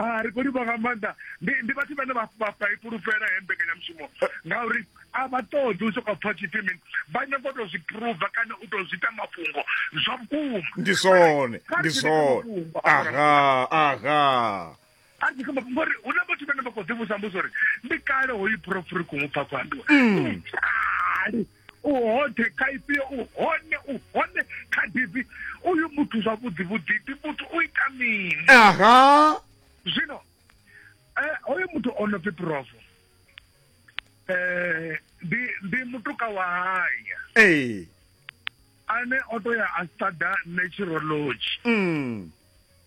a ri khou livha nga maanḓa ndi ndi vhathu vhane vha i fhulufhela he mbekanyamushumo ngauri a vha ṱoḓi u sokou pfa tshipfi mini vha nyanga u tou zwi phuruva kana u tou zwi ita mafhungo zwa vhukuma ndi zwone ndi zwone aha aha a tshi kha mafhungo uri hu na vhathu vhane vha khou ḓivhusa mbuso uri ndi kale hoyu phurofuri khou mu pfa khou ambiwa mm. ndi kale u hoṱhe kha ifhio u hone u hone kha divi uyu muthu zwavhuḓi vhuḓi ndi muthu u ita mini aha zwino eh, hoyo muthu o no pfi provo um ndi ndi mutuka wa haya ee ane o to ya a studa naturology mm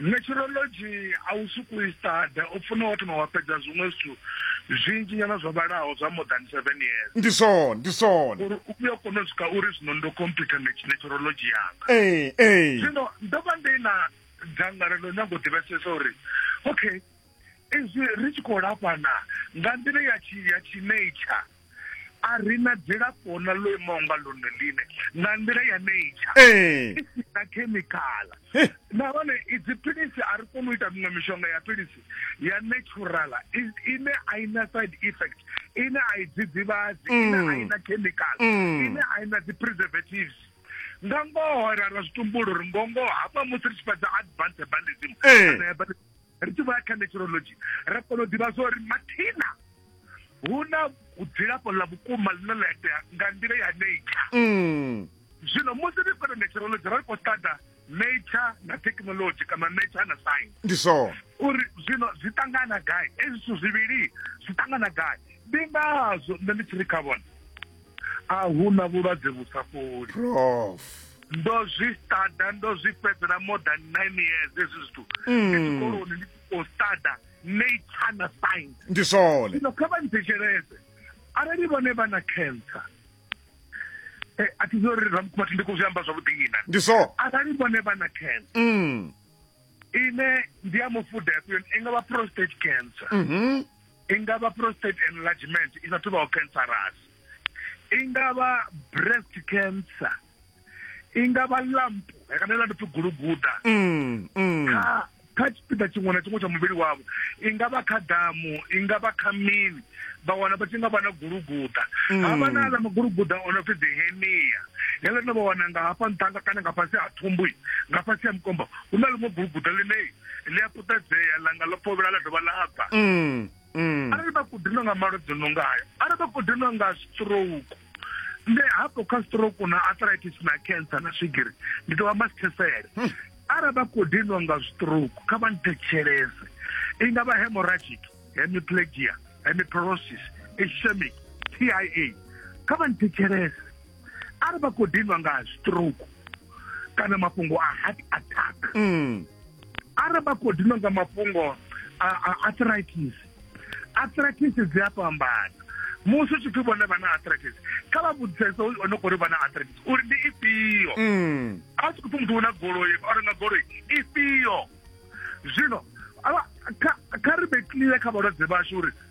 Meteorology a u suku i stada, u funa wa thoma wa fhedza zwiṅwe zwithu zwinzhi nyana zwo vhalaho zwa more than seven years. Ndi zwone, ndi zwone. Uri u vhuye kone u swika uri zwino ndo computer meteorology yanga. Ee, ee. Zwino ndo vha ndi na dzangalelo nyago ḓivhesesa uri okay izwi ri tshi khou lafhana nga nḓila ya tshi ya tshi nature. a ri na dzilafho na ḽo imaho nga ḽone ḽine nga nḓila ya nature eh. i si na khemikhala eh. nahone idzi philisi a ri koni u ita miṅwe mishonga ya philisi ya naturala ine a i na side effect ine a i dzidzivhadzi mm. ine a i na khemikhala mm. ine a i na dzi-preservatives nga ngoho ra ra zwitumbulo ri ngongoho hafha musi ri tshi fhedza advance herbalism eh. kana herbalism ri tshi vho ya kha meteorology ra kona u ḓivha zwa uri mathina hu na dzilafho ḽa vhukuma ḽine ḽa itea nga nḓila ya nature mm. zwino musi ri khou na meteorology ra ri khou ṱada nature na technology kana nature na science ndi zwone uri zwino zwi ṱangana gai ezwi zwithu zwivhili zwi ṱangana gai ndi ngazwo nṋe ndi tshi ri kha vhona a hu na vhulwadze vhu sa fholi prof ndo zwi stada ndo zwi fhedzela more than nine years hezwi zwithu mm. tshikoloni ndi khou stada nature na science ndi zwone zwino kha vha nthetsheleze arali vhone vha na cancer eh, a thi zwi uri ramkhumathi ndi khou zwi amba zwavhuḓi ina ndi so arali vhone vha na cancer mm. ine ndi ya mufuda yafhiyoni i nga vha prostate cancer mm -hmm. i nga vha prostate enlargement i sa thuvhaho cancerous i nga vha breast cancer i nga vha lump kana ḽa ndipfi guluguda mm, mm. kha kha tshipiḓa tshiṅwe na tshiṅwe tsha muvhili wavho i nga vha kha damu i nga vha kha mini vha wana vha tshi nga vha na guluguda mm. ha vha na aḽa maguluguda o no pfi dehenia heḽo no vha wana nga hafha nṱhanga kana nga fhasi ha thumbu nga fhasi ha mukombo hu na ḽiṅwe guluguda ḽine ḽi a puṱedzea langa ḽo fhovhela ḽa dovha ḽa bva mm, mm. arali vha kudinwa nga malwadze no ngayo arali vha kudinwa nga stroke nde hafho kha stroke na arthritis na cancer na swigiri ndi tou amba sithesele hmm. arali vha khou dinwa nga stroke kha vha nthetshelese i nga vha hemorrhagic hemiplegia hemiperosis ischemic tia kha vha nthetshelese arali vha khou diniwa nga stroke kana mafhungo a heart attack mm. arali vha khou diniwa nga mafhungo a arthritis arthritis dzi a fhambana musi u tshi pfi vhone vha na arthritis kha vha vhudzisesa o no khou ri vha na arthritis uri ndi ifhio mm. a tshi khou pfi muthu u na goloi o renga goloi ifhio zwino kha ri vhe clear kha vhalwadze vhashu uri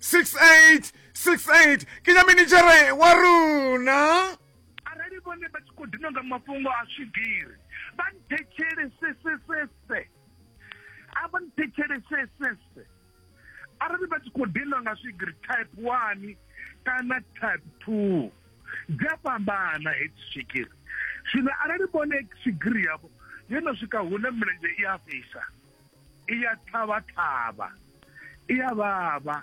68 68 ke nya minichere wa rona arali vhone vha tshi khou dina nga mafhungo a swigiri vha nthetshelese sesese a vha nthetshelese sese arali vha tshi khou dina nga swigiri type one kana type two dzi a fhambana hedzi swigiri zwino arali vhone swigiri yavho yo no swika hune milenzhe i a fhisa i ya thavha thavha i ya vhavha